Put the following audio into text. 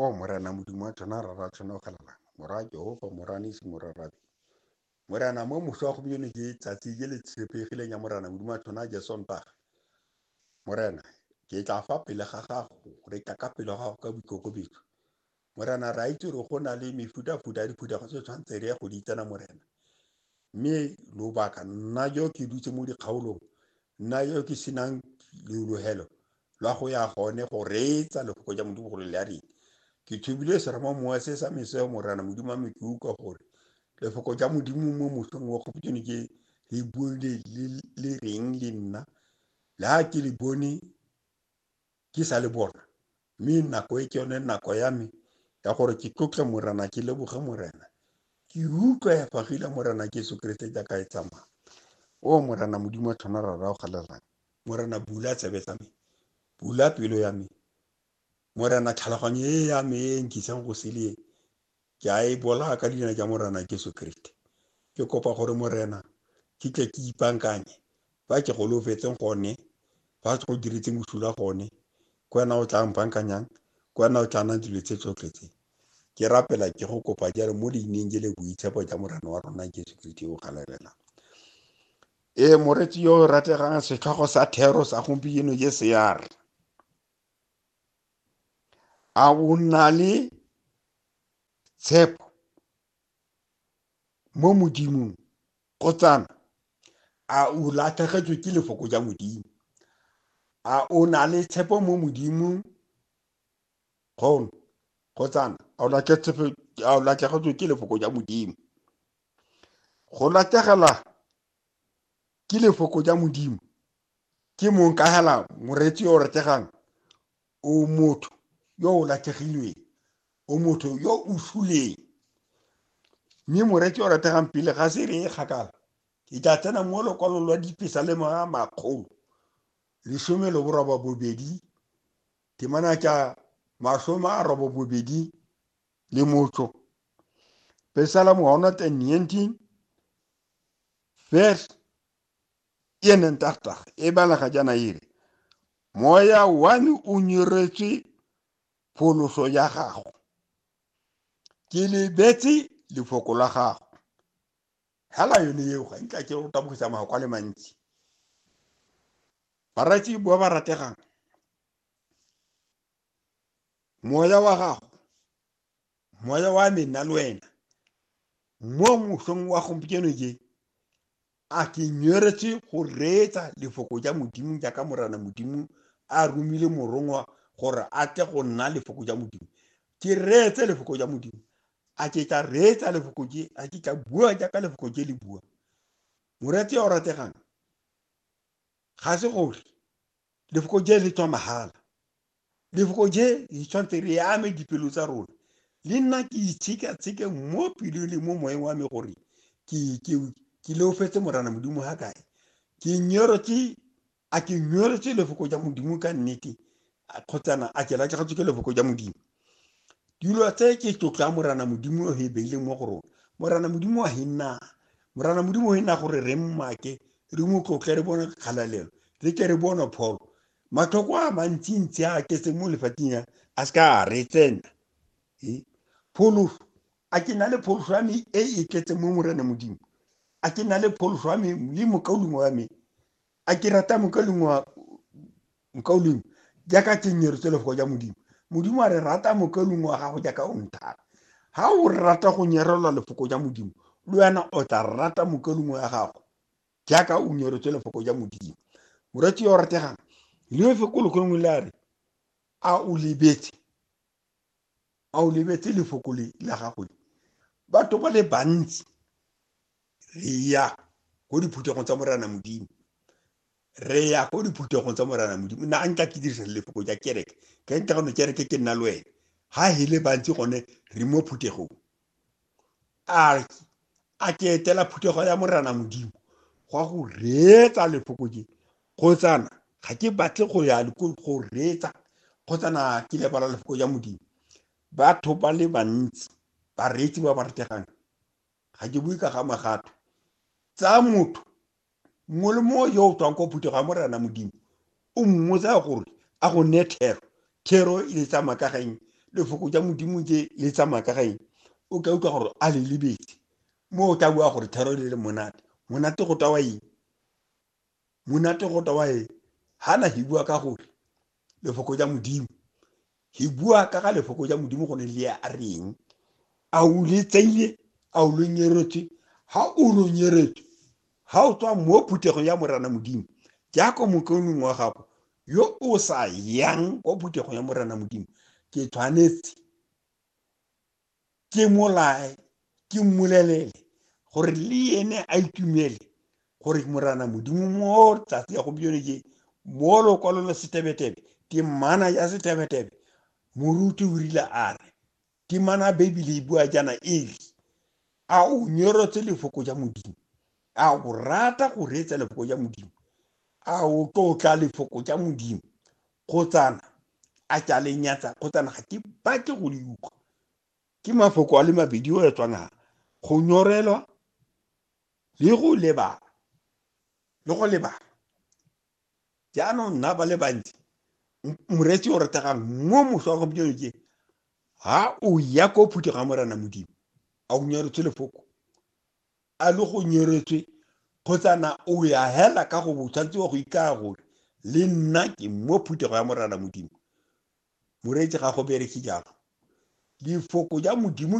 o morena modimo wa tshwana rara tshwana o galala morwa jehova moranesi morarabe morena mo moso wa gompieno ke tsatsi ke le tshepegileng ya morena modimo wa tshwana jesontaga morena ke tla fa pele ga gago re tla ka pele ga gago ka boikokobetso Morena, re a itse gore go na le mefutafuta ya diphuthego tse tshwanetse re ya go di tsena Morena. Mme lobaka nna jo ke dutse mo dikgaolong, nna jo ke senang leologelo lwa go ya gone go reetsa lefoko ja Modimo gore le a reng. Ke thubile seramo mowa se sa meseo Morena Modimo wa me ke utlwa gore lefoko ja Modimo mo mosong wa gopotone ke le bue le, le, le reng le nna. Le ha ke le bone ke sa le bona, Mme nako e ke yone nako ya me ya gore ke tlotle Morena, ke leboge Morena. Ke utlwa ya fagile Morena Jesu Keresete jaaka e tsamaya. O Morena Modimo wa tlhona ra rao galelang. Morena bula tsebe tsa me, bula pelo ya me. Morena tlhaloganyo e ya me e nkisang go seleng. Ke a e bola ka leina tša Morena Jesu Kriste. Ke kopa gore Morena ke tle ke ipankanye ba ke golofetseng gone, ba se go diretse mošula gone. Ke wena o tla mpankanyang, ke wena o tla nang dilo tse tsotlhe tse. Ke rapela ke go kopa jalo mo leineng je le boitshepo ja Morena wa rona Jesu Kriste yo o galebelang. Ee, moretsi yo o rategang setlhogo sa thero sa gompieno je sear. a o na le tshepo mo modimong kotsana a o latlhegetswe ke lefoko ja modimo a o na le tshepo mo modimong kgono kotsana a o latlhegetswe ke lefoko ja modimo go latlhegela ke lefoko ja modimo Ke mong ka hela moreetsi yo o retegang o motho yo o latlhegilweng, o motho yo o suleng. Mme moreetsi o retegang pele ga se re e kgakala, ke tla tsena mo lokwalong lwa dipesa le mga makgolo lesome le boroba bobedi temana tša masome a robo bobedi le motso Psalm 119 verse e neng tagtag e balega jaana e re moya one o nyeretswe pholoso ya gago ke lebetse lefoko la gago hela yone eo ga ntla ke go tabogisa magoko a le mantsi baratsi ba ba rategang moya wa gago moya wa me nna le wena mo mosong wa gompieno je a ke nyweretse go reetsa lefoko ja modimo jaaka morana modimo a romile morongwa gore a tle go nna lefoko ja modimo ke reetse lefoko ja modimo a ke tla reetsa lefoko je a ke tla bua jaaka lefoko je le bua morati ya o rategang ga se gore Lefoko je le tswa mahala. Lefoko je le tshwanetse re ame dipelo tsa rona. Le nna ke itshekatsheke mo pelong le mo moeng wa me gore ke leofetse morana modimo ga kae. Ke nyorotse a ke nyorotse lefoko ja modimo ka nnete kgotsana a ke latlhegetswe ke lefoko ja modimo dilo tse ke tlotlo ya morana modimo e beileng mo go rona morana modimo wa henna morana modimo o henna gore re mmake re mo tlotle re bone kgalalelo re ke re bone pholo matlhoko a mantsintsi a ketse mo lefateng ya a se ka a re tsena pholoso a ke na le pholoso ya me e e tletseng mo morana modimo a ke na le pholoso ya me le mokaulimo wa me a ke rata mokaleng wa mokauleng jaaka tsenyero tse lefoko ja modimo modimo a re rata mokaleng wa gago jaaka o nthata ga o rata go nyerelwa lefoko ja modimo le wena o tla rata mokaleng wa gago jaaka o nyeretswe lefoko ja modimo moratsi yo o rategang lefe ko lekgolongwe le a re a o lebetse a o lebetse lefoko le la gago le batho ba le bantsi re ya ko diphuthegong tsa morana modimo re ya ko diphuthegong tsa morana modimo na nka ke dirisa lefoko ja kereke ke nka gone kereke ke nna le wena ha hele bantsi gone re mo phuthegong arki a ke etela phuthego ya morena modimo gwa go reetsa lefoko je kgotsana ga ke batle go ya go reetsa kgotsana ke lebala lefoko ja modimo batho ba le bantsi bareetsi ba ba retegang ga ke bue ka ga magato tsa motho mongwe le mongwe yo o tswang ko phutego ya morena modimo o mmotsa gore a go ne thero thero e le tsamaya ka gaeng lefoko ja modimo tse le tsamaya ka gaeng o ka utlwa gore a le lebetse mo o tla bua gore thero e le le monate monate go tawa eng monate go tawa eng ga na he bua ka gore lefoko ja modimo hi bua ka ga lefoko ja modimo go ne le ya a reng a o le tseile a o lo nyeretswe ha o lo nyeretswe ha o tswa mo phuthegong ya morana modimo jaaka mokaonong wa gago yo o sa yang kwa phuthegong ya morana modimo ke tshwanetse ke molae ke mmolelele gore le ene a itumele gore morana modimo mo tsatsi ya gompieno je mo lokwalo la setebetebe temana ya setebetebe moruti o rile a re temana bibele e bua jana e re a o nyorotse lefoko ja modimo a o rata go reetsa lefoko ja modimo a o tlotla lefoko ja modimo kgotsana a ke a le nyatsa kgotsana ga ke batle go le utlwa ke mafoko a le mabedi o etswang a go nyorelwa le go lebala le go lebala jaanong nna ba le bantsi moretsi o retegang mo moso wa gompieno ke ha o ya ko phutho ga morena modimo a o nyoretse lefoko a le go nyeretswe kgotsa na o ya hela ka go bo tshwanetse wa go ikaya gore le nna ke mo phuthego ya morana modimo moreetsi ga go bereke jalo lefoko ja modimo